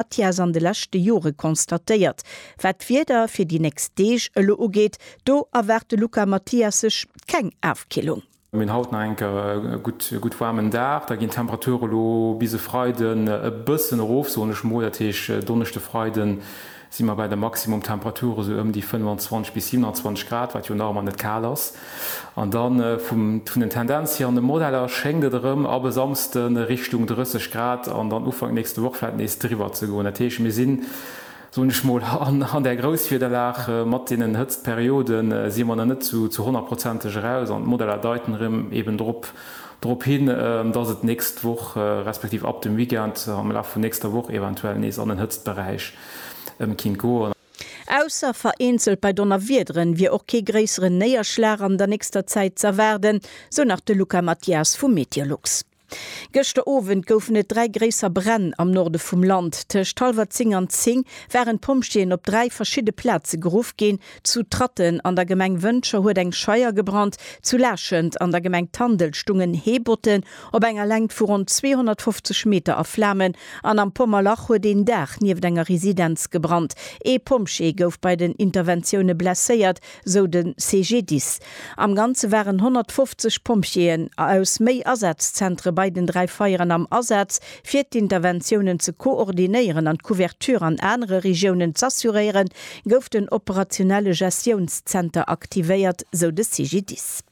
Atias an de leschte Jore constatéiert. Wat d'Wieder fir déi nächst Deeg elo ugeet, do erwaart de Luca Mathias sech keng Afkillung. Mir hunn haut nach eng Kéier e gutt waarmen Dag. Da ginn d'Temperature elo bis e Freiden e bëssen erof, soen ech mol. Dat heescht, Donneschde, Freide si mer bei de Maximumtemperature sou ëm déi 25 bis 27 Grad, wat jo nach ëmmer net kal ass. An da vum vun den Tendenz hier an de Modeller schéngt et erëm ab e Samsde Richtung 30 Grad an dann Ufank nächste Woch vläit nees driwwer ze goen. Dat heescht, mir sinn, soen ech mol, an an där Grousswiederlag. Mat deenen Hëtztperiode si mer nach net zu zu honnertprozenteg eraus an d'Modeller deiten erëm eben drop drop hin, dass et nächst Woch respektiv ab dem Weekend am Laf vun nächster Woch eventuell nees an den Hëtztberäich kinnt goen. Ausser vereenzelt bei Donnerwiederen wier och kee gréisseren Néierschlag an der nächster Zäit z'erwaarden, sou nach de Luca Mathias vu Meteolux. Gëschter Owend goufen et dräi gréisser Bränn am Norde vum Land. Tëscht hallwer 10 an 10 waren d'Pompjeeën op dräi verschidde Plaze geruff ginn, Zu Tratten an der Gemeng Wëncher huet eng Scheier gebrannt, zu Laachent an der Gemeng Tandel stungen Heebotten Op enger Längt vu ronn 250 Meter a Flamen an am Pommerlach huet een Daach nieft enger Residenz gebrannt. Ee Pompjee gouf bei den Interventioune blesséiert, sou de CGDIS. Am Ganze waren 150 Pompjeeën aus méi Asazzentere bei den dräi Feieren am Asaz, fir d'Interventiounen ze koordinéieren an d'Couverture an anere Regiounen z'assuréieren, gouf den operationelle Gestiounszenter aktivéiert, sou de CGDIS.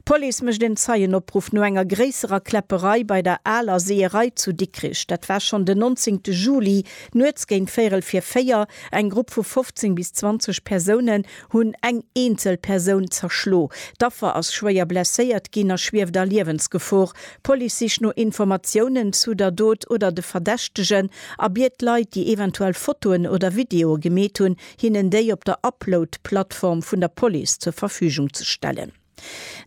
D'Police mécht en Zeienopruff no enger gréisserer Kläpperei bei der Aler Seeërei zu Dikrich. Dat war schonn den 19 te Juli. Nuets géint véierel vir véier, eng Grupp vu 15 bis 20 Persounen hunn eng eenzel Persoun zerschlo. D'Affer ass schwéier blesséiert ginn a schwieft a Liewensgefor. D'Police sicht no Informatiounen zu der Dot oder de Verdächtegen a biet Leit, déi eventuell Fotoen oder Videoe gemeet hunn, hinnen déi op der Upload-Plattform vun der Police zur Verfügung ze stellen.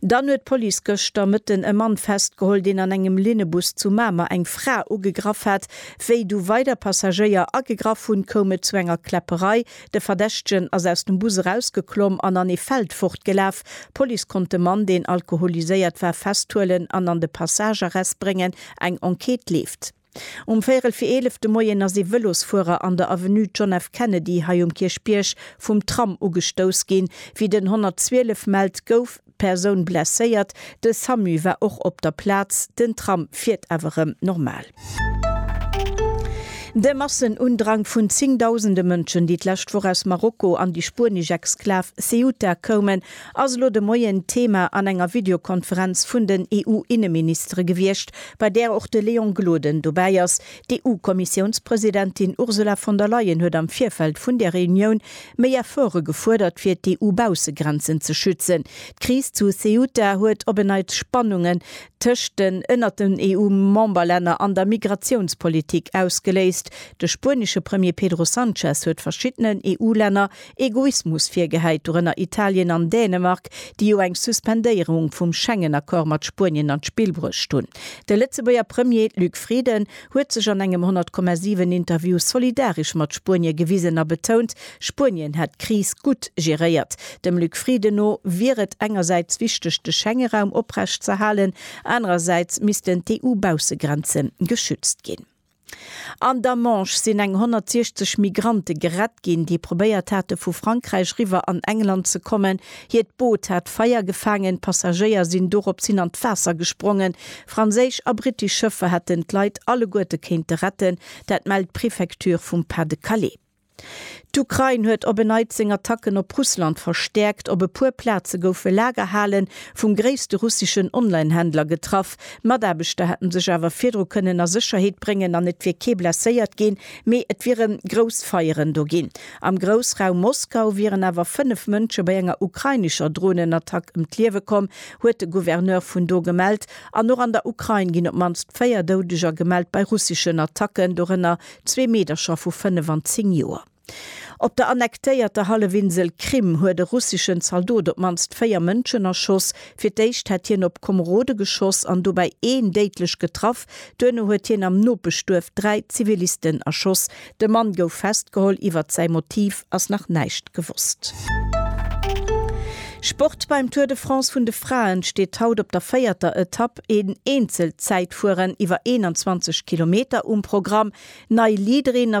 Dann huet d'Police gëschter Mëtten e Mann festgeholl, deen an engem Linnebus zu Mamer eng Fra ugegraff hat. Wéi du weider Passagéier agegraff hunn, koum et zu enger Kläpperei. De Verdächtegen ass aus dem Bus erausgeklomm an an ee Feld fortgelaf. D'Police konnt de Mann, deen alkoholiséiert war, festhuelen an an de Passagearrest bréngen. Eng Enquête leeft. Um véierel fir 11 de Moien ass ee Vëlosfuerer an der Avenue John F. Kennedy hei um Kierchbierg vum Tram ugestouss ginn. Wéi den 112 mellt, gouf d'Persoun blesséiert. De Samu war och op der Plaz. Den Tram fiert awer rëm normal. De Massenundrang vun zéngdausende Mënschen, déi d'lescht Woch aus Marokko an déi spuenesch Exklav Ceuta koumen, ass elo de Moien d'Thema an enger Videokonferenz vun den EU-Inneministere gewiescht, bei där och de Léon Gloden dobäi ass. D'EU-Kommissiounspresidentin Ursula von der Leyen huet am Virfeld vun där Reunioun méi Efforte gefuerdert, fir d'EU-Baussegrenzen ze schützen. D'Kris zu Ceuta huet op en Neits Spannungen tëscht den ënnert den EU-Memberlänner an der Migratiounspolitik ausgeléist. De spuenesche Premier Pedro Sanchez huet verschiddenen EU-Länner Egoismus virgehäit, dorënner Italien an Dänemark, déi jo eng Suspendéierung vum Schengen-Accord mat Spuenien an d'Spill bruecht hunn. De Lëtzebuerger Premier Luc Frieden huet sech an engem 100,7 Interview solidaresch mat Spuenie gewisen a betount, Spuenien hätt d'Kris gutt geréiert. Dem Luc Frieden no wier et engersäits wichteg, de Schengeraum oprecht z'erhalen, anerersäits missten d'EU-Baussegrenze geschützt ginn. An der Manche sinn eng 160 Migrante gerett ginn, déi probéiert hate vu Frankräich riwwer an England ze kommen. Hiert Boot hat Feier gefaangen, d'Passagéier sinn doropshin an d'Waasser gesprongen. Franséisch a brittesch Schëffer hätten d'Leit alleguerte kéinte retten, dat mellt d'Prefecture vum Pas-de-Calais. D'Ukrain huet op en Neits seng Attacken op Russland verstäerkt. Op e puer Plaze goufe Lagerhale vum gréisste russeschen Online-Händler getraff. Mataarbechter hätte sech awer virdru kënnen a Sécherheet bréngen an et wier kee blesséiert ginn, mee et wiere grouss Feieren do ginn. Am Groussraum Moskau wieren awer fënnef Mënsche bei enger ukrainescher Dronenattack ëm d'Liewe komm, huet de Gouverneur vun do gemellt. An och an der Ukrain ginn op d'mannst véier Doudeger gemellt bei russeschen Attacken, dorënner Zwee Meedercher vu 5 an 10 Joer. Op der annektéierter Hallefinsel Krim huet e russeschen Zaldot op d'mannst véier Mënschen erschoss. Fir d'éischt hätt hien op Komerode geschoss an dobäi een déidlech getraff. Duerno huet hien am Nopeschduerf dräi Zivilisten erschoss. De Mann gouf festgeholl, iwwert säi Motiv ass nach näischt gewosst. Sport, Beim Tour de France vun de Fraen steet haut op der véierter Etapp een eenzelt Zäitfueren iwwer 21 Kilometer um Programm. Nei Leaderin ass